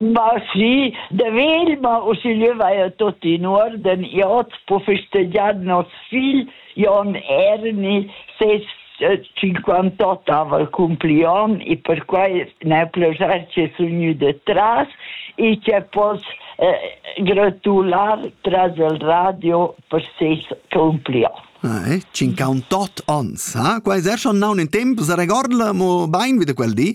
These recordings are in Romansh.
Ma sì, da vegl ma uschigliö vaja tuot in uorden. Io hoz po festegiar nos figl Jon Erni ses cinquant'ot ava accumpli on e perquai n'ha plaschair che sun gnü detras e che poss gratular tras il radio per ses accumpli on. Eh, cinquant'ot ons, ha? Quai es er schon naun in temp, sa regorda mo bain vi da quel di?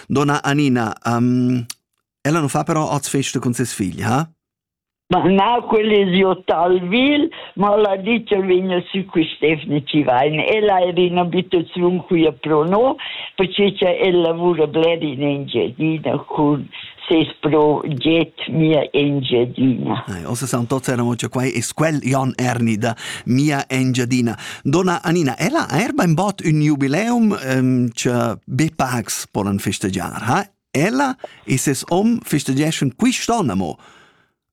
Donna Anina, um, ella non fa però oz festa con ses figli, ha? Ma na, quella è io Talvil, ma la dice vegna su quest'efni ci vain. Ella è in abitazione qui a Prono, perché ella lavora bler in Engiadina con ses proget mia Engiadina. Eh, ossa san tots erano, cioè quai è quel Jan Erni da mia Engiadina. Donna Anina, ella ha er bainbod ün jubileum um, che be pacs polen festegiar, ha? Ella e ses om festegeschan quist'on, amo?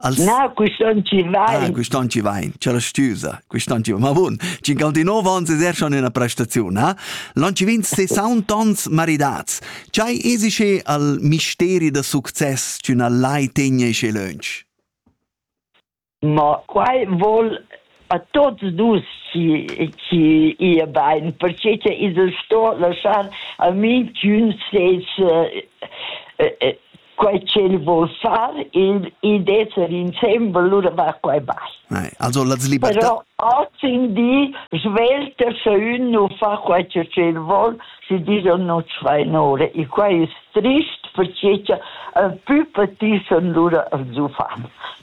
Als... Na, quist'on ci vai. Ah, quist'on ci vai, c'è la stüsa, quist'on ci vai. Ma bun, ci gal di novo ans es schon una prestaziun, ha? Non ci vin 60 ans maridats. C'hai esice al misteri da success c'una lai tegna isce lönch? Ma quai voul a tuots nus chi chi ia bain, perche cha i's sto laschar a minchün ses quai ch'el voul far ed ed esser insembel, lura va quai bain. Also las libertà Però hoz in di svelta scha ün nu fa quai cha ch'el voul, schi disch no tschvain ora. E quai es trist perche cha ün pü patissan lura als uffants.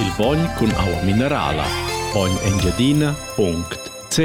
Il bogn cun aua minerala. Bogn Engiadina.ch